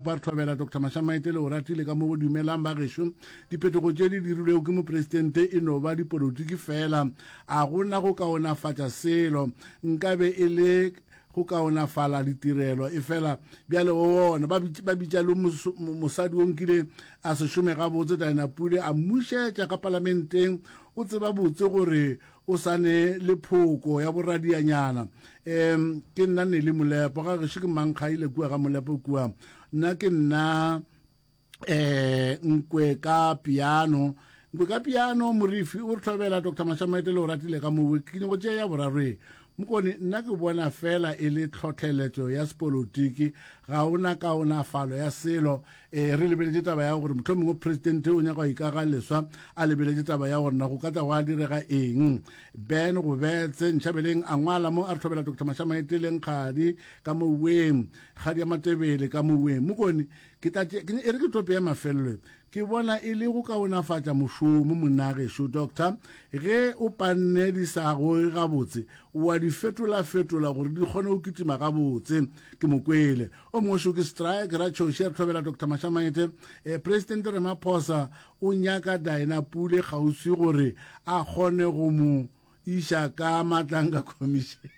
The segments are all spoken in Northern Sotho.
Ba re hlobela Doctor Mashamaite le Oratile ka mo go dumelang bagešo. Diphetogo tše di dirilwego ke mopresidente e no ba dipolotiki feela. A go na go kaonafatša selo? Nka be e le go kaonafala ditirelo. Efela bjale o bona ba bitša, ba bitša le mosadi o nkile a se šome gabotse, Diana Pule, a mmušetša ka palamenteng. O tseba botse gore o sa ne le phoko ya boradianyana um ke nna nele molepo ga gešo ke mankga ile kua ga molepo kua nna ke nna um nkwe ka piano nkwe ka piano morifi o re tlhobela dr mashamaetele o ratile ka mowe ke nyoko tšea ya borarwe Mokone, nna ke bona fela e le tlhohleletšo ya sepolotiki, ga o na kaonafalo ya selo. E, re lebeletše taba ya gore mohlomongwe presidente o nyaka go ikaga leswa, a lebeletše taba ya gore na go ka tla gwa direga eng. Ben go betse, Nchabeleng a ngwala mo a re hlobela Doctor Mashamaete le Nkgadi ka moweng, Kgadi ya Matebele ka moweng. Mokone, ke tla tšea, e re ke tope ya mafelelo ye, Ke bona e le go kaonafatša mošomo, Monnagešo Doctor, ge o panne di sa goge gabotse, o a di fetolafetola gore di kgone go kitima gabotse. Ke mo kwele. O mongwe šo ke Strike, Ratšhoše, re hlobela Doctor Mashamaete, eh, Presidente Ramaphosa o nyaka Dinah Pule kgauswi gore a kgone go mo iša ka matlanka commission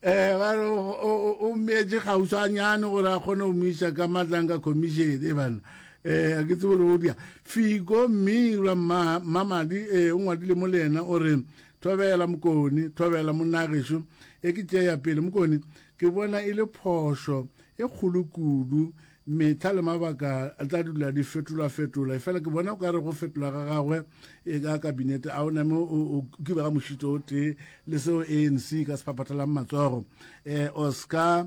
eh ba re o mmeetse gauswanyane gore a kgone go mo iša ka matlanka commission e bana eh ke tsebo go dia fiko mme ra mma mamadi eh o ngwadile mo le ena o re thobela mokone thobela monagesho e ke tšeya pele mokone ke bona e le phošo e kgolo kudu Mehla le mabaka a tla dula di fetolwa-fetola, efela ke bona o ka re go fetola ga gagwe e ka kabinete a o name o kiba ga mošito o tee le seo ANC e ka se phaphatelang matsogo. Um Oscar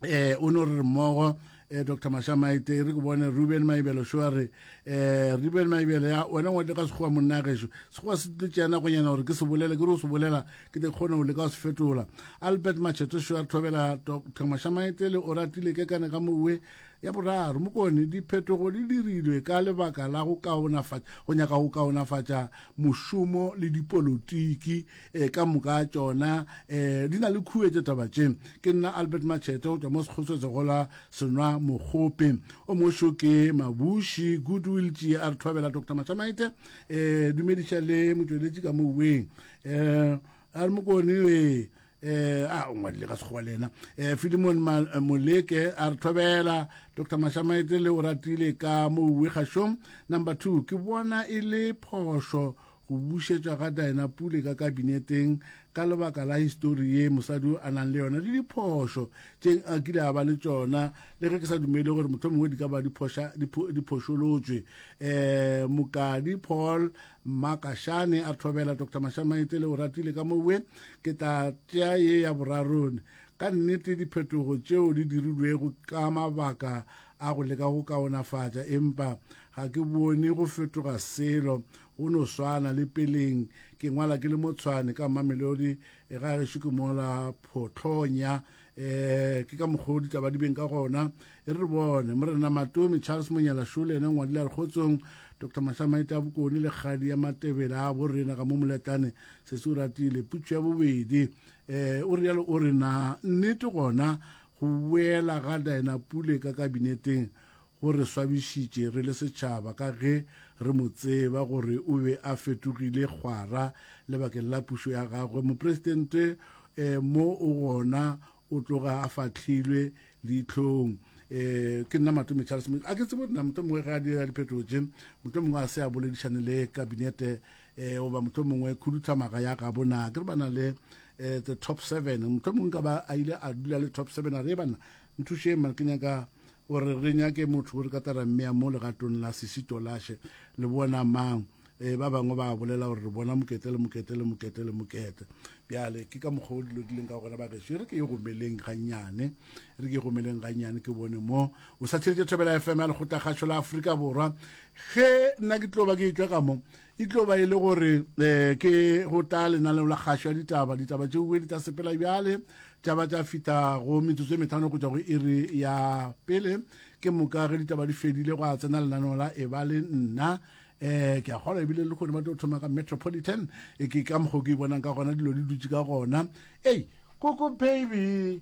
um o ne o re re mmogo eh, dr mashamaite re ke bone ruben maibelo šo a re eh, ruben maibelo ya wena ngwate ka sekgowa monna gešo sekgowa se tlotšeana gonyana gore ke se bolele ke re o se bolela ke te kgone go leka go se fetola albert machetošo a thobela thamašamaete le o ratile ke kane ka mowe ya boraro mokone diphetogo di dirilwe ka lebaka la go kaonafatša go nyaka go kaonafatša mošomo le dipolotiki e, ka moka tšona e, di na le khuetše taba tše ke nna albert machete go tšwa mo sekgotswetse go la senwa mogope o mošo ke mabuši goodwill tšie a re thobela dr machamaite e, dumediša le motšweletši ka moweng um a re mokone ee eh a o ngwadile ka sekgowa le ena eh filimon eh, moleke a re thobela dr mashamaetse le o ratile ka mo uwe kgašong number two ke bona e le phošo go bušetša ga dina pule ka kabineteng ka lebaka la histori ye mosadi o a nang le yona le diphošo tše a kile a ba le tšona le ge ke sa dumele gore motho mongwe di ka ba diphošolotswe um mokadi paul Mma Kashane a thobela Doctor Mashamaetse le Oratile ka mo we, ke tla tšea ye ya borarone. Ka nnete diphetogo tšeo di dirilwego ka mabaka a go leka go kaonafatša, empa ga ke bone go fetoga selo, go no swana le peleng. Ke ngwala ke le mo Tshwane ka Mamelodi, ga gešo ke mola Photlonya um ke ka mokgwa o ditaba di beng ka gona e re bone morena matomi charles monyalasho le ene ngwadile a re kgotsong dr mahlamaete a bokone le kgadi ya matebela a bo rena ka mo moletlane se se o ratile putso ya bobedi um o rialo o re na nnete gona go boela ga dina pule ka kabineteng Go re swabišitše re le setšhaba ka ge re mo tseba gore o be a fetogile kgwara lebakeng la pušo ya gagwe. Mopresidente mo o gona o tloga a fahlilwe leitlhong. Ke nna Matome Charles Motšo. A ke tsebe gore na mohlomongwe ge a dira diphetogo tše, mohlomongwe a se a boledišane le kabinete goba mohlomongwe khuduthamaga ya gabo na ke re ba na le the top seven, mohlomongwe nka ba a ile a dula le top seven a re, Ebanna Nthuše mare ke nyaka gore re nyake motho o re ka tara mmea mo legatong la Sisitolashe. Le bona mang? Ee, ba bangwe ba a bolela gore re bona mokete le mokete le mokete le mokete. Bjale ke ka mokgwa o dilo di leng ka gona bagešo. E re ke ye gomeleng gannyane, e re ke ye gomeleng gannyane ke bone mo o sa theletše Thobela FM ya Lekgotlakgašo la Afrika Borwa. Ge nna ke tlo ba ke etšwa ka mo, E tlo ba e le gore um ke go tla lenaneo la kgašo ya ditaba ditaba tše bobedi tsa sepela bjale tša ba tša fita go metsotso e metlhano go tšwa go iri ya pele ke moka ge ditaba di fedile go a tsena lenaneo la e ba le nna eh ke a kgolwa ebile le kgone ba tlo thoma ka metropolitan e ke ka mokgwa ke e bonang ka gona dilo di dutse ka gona ei koko baby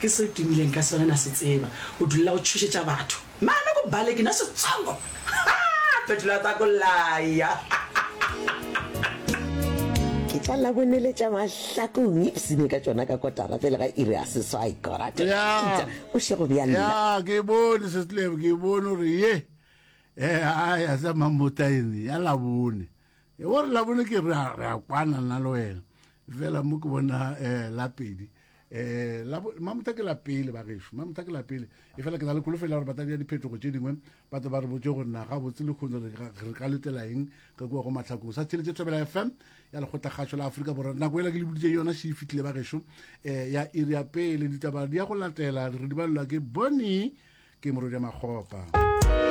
Ke se o timileng ka sona na se tseba o dulela go tšhošetša batho mane ko bale ke na setsongo haa phetolo ya tako laya Ke tla la boneletša mahlakong ipsine ka tšona ka kotara pele ga iri ya seswai kora Ya, Peter o šego bja nna ya, ke bone setlebo, ke bone gore ye e a ya sa mamotaene ya labone. E bo re labone ke re a- re a kwana nna le wena. Fela mo ke bona eh la pedi. um mamotha ke la pele bagešo mamotha ke la pele e fela ke na le kholofela gore batadi ya diphetogo tše dingwe ba tlo ba re botse gore naga botse le kgone re ka letela eng ka kua go matlhakong sa theletše thobela fm ya lekgotlakgašo la aforika borwa nako ela ke le boditse yona se e fitlhile bagešo um ya iri ya pele ditaba di ya go latela re di balelwa ke bone ke morodia makgopa